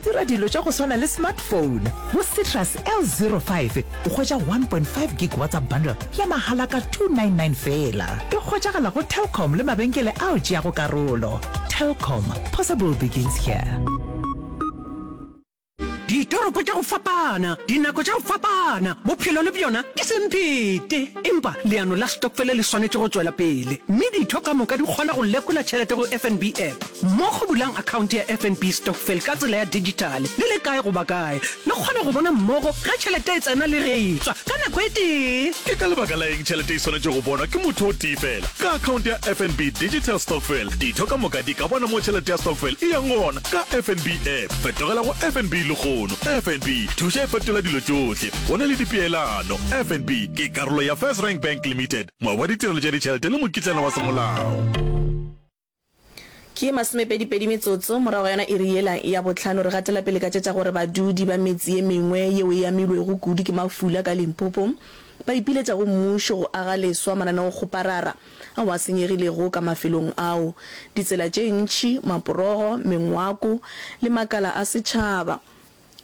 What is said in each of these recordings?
Dira dilo tša go swana le smartphone go Citrus L05 o hwetša 1.5 gig WhatsApp bundle ya mahala ka 299 feela. E hwetšagala go Telkom le mabenkele ao tšeago karolo. Telkom, possible begins here. Ditoropo tša go fapana, dinako tša go fapana, bophelo le bjona ke semphete. Empa leano la stokfele le swanetše go tšwela pele, mme ditho ka moka di kgona go lekola tšhelete go FNB app. Mmogo bulang akhaonte ya FNB Stokvel ka tsela ya dijithale le le kae goba kae, le kgone go bona mmogo ge tšhelete e tsena le ge e tšwa ka nako e tee. Ke ka lebaka la eng tšhelete e swanetše go bonwa ke motho o tee feela? Ka akhaonte ya FNB Digital Stokvel, ditho ka moka di ka bona mo tšhelete ya stokvel e yang gona ka FNB App. Fetogela go FNB lehono. FNB, thuša e fetola dilo tšohle. Go na le dipeelano. FNB ke karolo ya FirstRand Bank Limited, moabi wa ditirelo tša ditšhelete le mokitlana wa semolao. Ke masomepedipedi metsotso morago ga yona iri yela ya bohlano, re gatela pele ka tše tša gore badudi ba metse ye mengwe yeo e amilwego kudu ke mafula ka Limpopo ba ipiletša go mmušo go aga leswa mananeokgoparara ao a senyegilego ka mafelong ao, ditsela tše ntši, maporogo, mengwako le makala a setšhaba.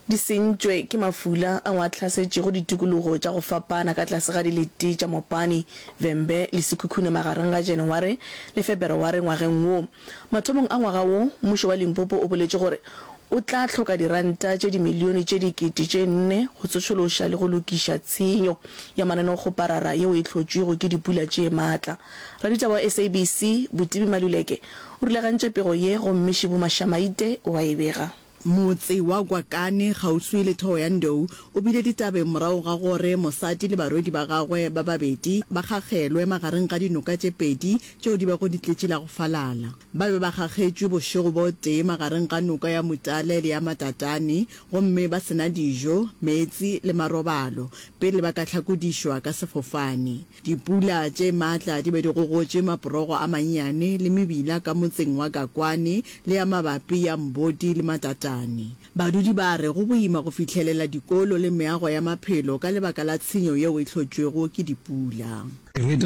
Di sentšwe ke mafula ao a hlasetšego ditikologo tša go fapana ka tlase ga dilete tša Mopane, Vhembe le Sekhukhune magareng ga Janaware le Febereware ngwageng wo. Mathomong a ngwaga wo, mmušo wa Limpopo o boletše gore o tla hloka diranta tše dimilione tše dikete tše nne go tsošološa le go lokiša tshenyo ya manonokgoparara yeo e hlotšwego ke dipula tše matla. Raditaba wa SABC, Botibi Maluleke, o rulagantše pego ye gomme Shibu Mashamaite o a e bega. Motse wa Gwakane, kgauswi le Thohoyandou, o bile ditabeng morago ga gore mosadi le barwedi ba gagwe ba babedi ba kgakgelwe magareng ga dinoka tše pedi tšeo di bego di tletše la go falala. Ba be ba kgakgetšwe bošego bo tee magareng ga noka ya Mutale le ya Matatane gomme ba se na dijo, meetse le marobalo pele ba ka hlakodišwa ka sefofane. Dipula tše matla di be di gogotše maporogo a mannyane le mebila ka motseng wa Gakwane le ya mabapi ya Mbodi le Matatane. Badudi ba re go boima go fihlelela dikolo le meago ya maphelo ka lebaka la tshenyo yeo e hlotšwego ke dipula. We have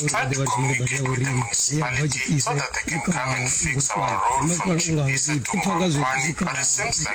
tried to communicate with the municipality so that they can come and fix our road from Chipisa to Gakwane but it seems like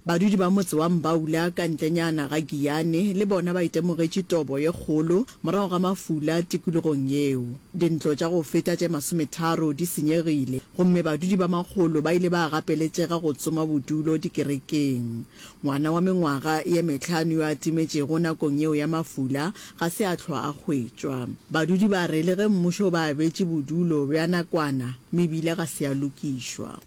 Badudi ba motse wa Mbaula ka ntlenyana ga Giyane le bona ba itemogetše tobo ye kgolo morago ga mafula tikologong yeo. Dintlo tša go feta tše masometharo di senyegile gomme badudi ba makgolo ba ile ba gapeletšega go tsoma bodulo dikerekeng. Ngwana wa mengwaga ye mehlano yo a timetšego nakong yeo ya mafula ga se a hlwa a hwetšwa. Badudi ba re le ge mmušo o ba abetše bodulo bja nakwana, mebila ga se ya lokišwa.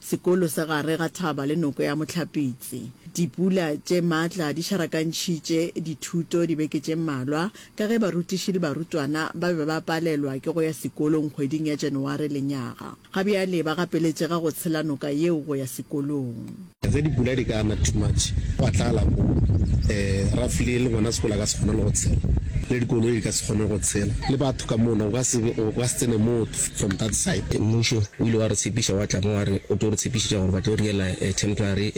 Sekolo sa gare ga thaba le noko ya Mohlapitse. Dipula tše matla di šarakantšhitše dithuto dibeke tše mmalwa ka ge barutiši le barutwana ba be ba palelwa ke go ya sekolong kgweding ya January lenyaga. Ga bjale ba gapeletšega go tshela noka yeo go ya sekolong. Ge dipula di ka na too much gwa tlala mo roughly le gona sekolo a ka se kgone le go tshela le dikoloi di ka se kgone go tshela le batho ka mona go ka se tsene motho. From that side mmušo o ile wa re tshepiša wa tla mo wa re o tlo re tshepišetša gore ba tlo re yela temporary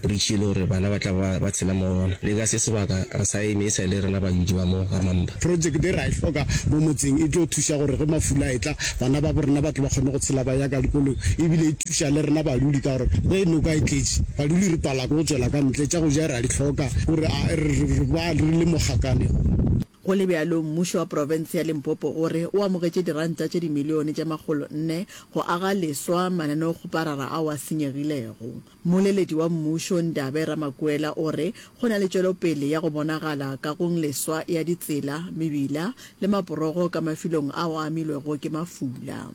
bridge e le gore bana ba tla ba ba tshela mo go yona le ka se sebaka re sa e misa le rena bayudi ba mo ga Mampa. Project e ra e hloka mo motseng e tlo thuša gore ge mafula a etla bana ba bo rena ba tle ba kgone go tshela ba ya ka dikolong e bile e thuša le rena badudi ka gore ge noka e tletše badudi re pala ke go tšwela ka ntle tša go ja ra di hloka gore re ba re le mogakanego. Go le bjalo, mmušo wa profense ya Limpopo o re o amogetše diranta tše dimilione tše makgolo nne go aga leswa mananeokgoparara ao a senyegilego. Mmoleledi wa mmušo Ndabe Ramakuela o re go na le tšwelopele ya go bonagala kagong leswa ya ditsela, mebila le maporogo ka mafilong ao a amilwego ke mafula.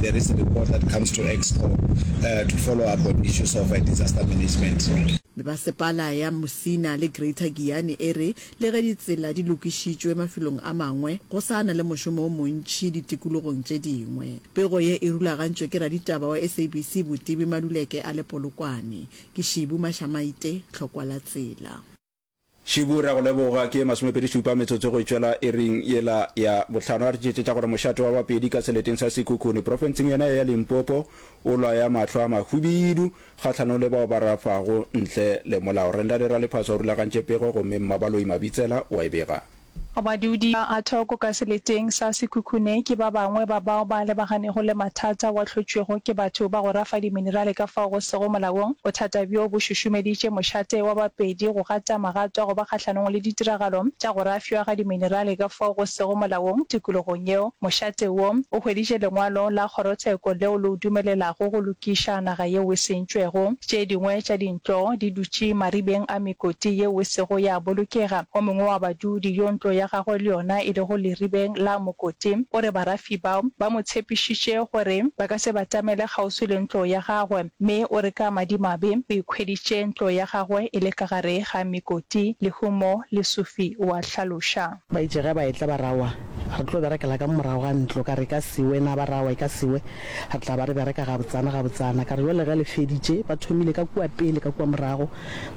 there is a report that comes to Exco uh, to follow up on issues of uh, disaster management. Mebasepala ya Musina le Greater Giyani e re le ge ditsela di lokišitšwe mafelong a mangwe, go sa na le mošomo o montši ditikologong tše dingwe. Pego ye e rulagantšwe ke raditaba wa SABC Botibi Maluleke a le Polokwane. Ke Shibu Mashamaite, Tlhokwa la Tsela. Šubu re a go leboga. Ke masomepedi šupa metsotso go e tšwela iring yela ya bohlano. A re tšetšetša gore mošate wa Bapedi ka seleteng sa Sekhukhune profenseng yona ye ya Limpopo o lwaya mahlo a mahubidu kgahlanong le bao ba rafago ntle le molao. Rendale Raliphaso o rulagantše pego gomme Mmabaloi Mabitsela wa e bega. Badudi ba a thoko ka seleteng sa Sekhukhune ke ba bangwe ba bao ba lebaganego le mathata wa hlotšwego ke batho ba go rafa diminerale ka fao go sego molaong. Bothata bjo bo šušumeditše mošate wa Bapedi go gata magato a go ba kgahlanong le ditiragalo tša go rafšwa ga diminerale ka fao go sego molaong tikologong yeo. Mošate wo o hweditše lengwalo la kgorotsheko leo le o dumelelago go lokiša naga yeo e sentšwego. Tše dingwe tša di. Tšo di dutše maribeng a mekoti yeo e sego ya bolokega. O mongwe wa badudi, yo ntlo ya gagwe le yona e lego leribeng la mokoti, o re barafi bao ba mo tshepišitše gore ba ka se batamele kgauswi le ntlo ya gagwe, mme o re ka madimabe o ikhweditše ntlo ya gagwe e le ka gare ga mekoti. Lehumo le Sufi o a hlaloša. Ba itše ge ba etla ba ra, Wa re tlo berekela ka morago ga ntlo. Ka re, E ka se we na, ba ra, Wa e ka se we. Re tla ba re bereka gabotsana gabotsana. Ka re, Bjale ge le feditše, ba thomile ka kua pele ka kua morago,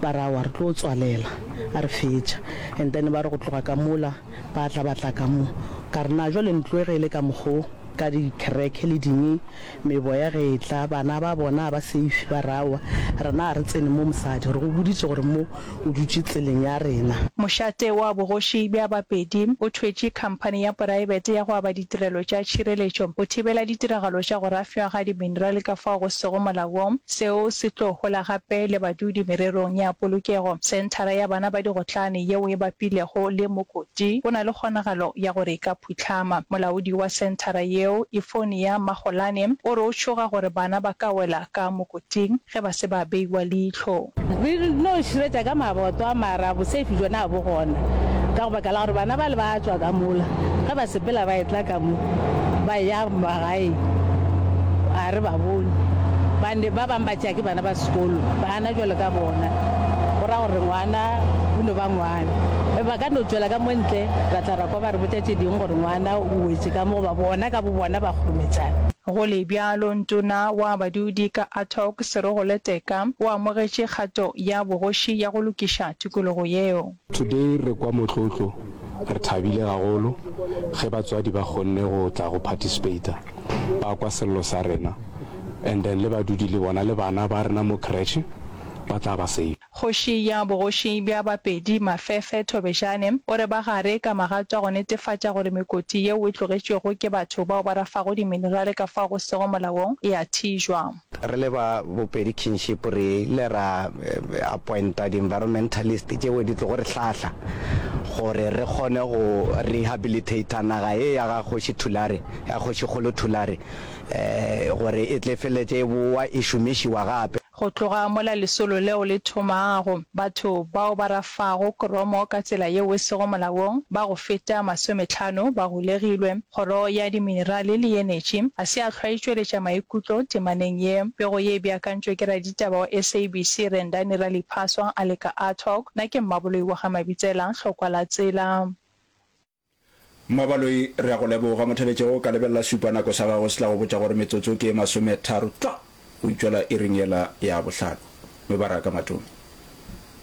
ba re, Aowa, re tlo tswalela a re fetša. And then ba re, Go tloga ka mola, ba tla ba tla ka mo. Ka re, Na bjale ntlo e ge e le ka mokgo, ka dikherekhe le dini, meboya ge e tla, bana ba bona ga ba safe? Ba re, Aowa, rena ga re tsene mo, mosadi. Re go boditše gore mo. O dutše tseleng ya rena. Mošate wa bogoši bja Bapedi o thwetše khamphani ya poraebete ya go aba ditirelo tša tšhireletšo go thibela ditiragalo tša go rafšwa ga diminerale ka fao go sego molaong seo se tlo hola gape le badudi mererong ya polokego. Senthara ya bana ba digotlane yeo e bapilego le mokoti o na le kgonagalo ya gore e ka phuhlama. Molaodi wa senthara yeo, Euphonia Magolane, o re o tšhoga gore bana ba ka wela ka mokoting. Ting ge ba se ba beiwa leihlo. Re no širetša ka maboto a mara boseifi bjona a bo gona, ka go baka la gore bana bale ba tšwa ka mola ge ba sepela ba etla ka mo ba ya magaeng, a re ba bone ba ne ba bang ba tšea ke bana ba sekolo ba na bjalo ka bona, go ra gore ngwana o no ba ngwana. Ge ba ka no tšwela ka mo ntle ra tla ra kwa ba re botša tše ding gore ngwana o wetše ka mo goba bona ka bo bona ba kgorometšana. Go le bjalo, Motona wa Badudi ka Attock Serogole Teka o amogetše kgato ya bogoši ya go lokiša tokologo yeo. Today re kwa motlotlo, re thabile gagolo ge batswadi ba kgonne go tla go participator, ba kwa sello sa rena and then le badudi le bona le bana ba rena mo creche ba tla ba safe. Kgoši ya bogoši bja Bapedi, Mafefe Thobejane, o re ba gare ka magato a go netefatša gore mekoti yeo e tlogetšwego ke batho bao ba rafago diminerale ka fao go sego molaong e a thijwa. Re le ba Bopedi Kinship re ile ra appointa di-environmentalist tšeo di tlogo re hlahla gore re kgone go rehabilitator naga ye ya ga Kgoši Thulare, ya Kgošikgolo Thulare gore e tle e feleletše e bowa e šomišiwa gape. Go tloga mola lesolo leo le thomago, batho bao ba rafago kromo ka tsela yeo e sego molaong ba go feta masometlhano ba golegilwe. Kgoro ya Diminerale le Enetši ga se ya hlwa e tšweletša maikutlo temaneng ye. Pego ye e beakantšwe ke raditaba wa SABC Rendani Raliphaswa a le ka Artog, na ke mmaboloi wa ga Mabitsela, Hlokwa la Tsela. Mmabaloi, re a go leboga. Mothabetše, o ka lebelela šupa nako sa gago se tla go botša gore metsotso ke e masometharo tlwa go itšwela iring yela ya bohlano. Mebaraka, Matome.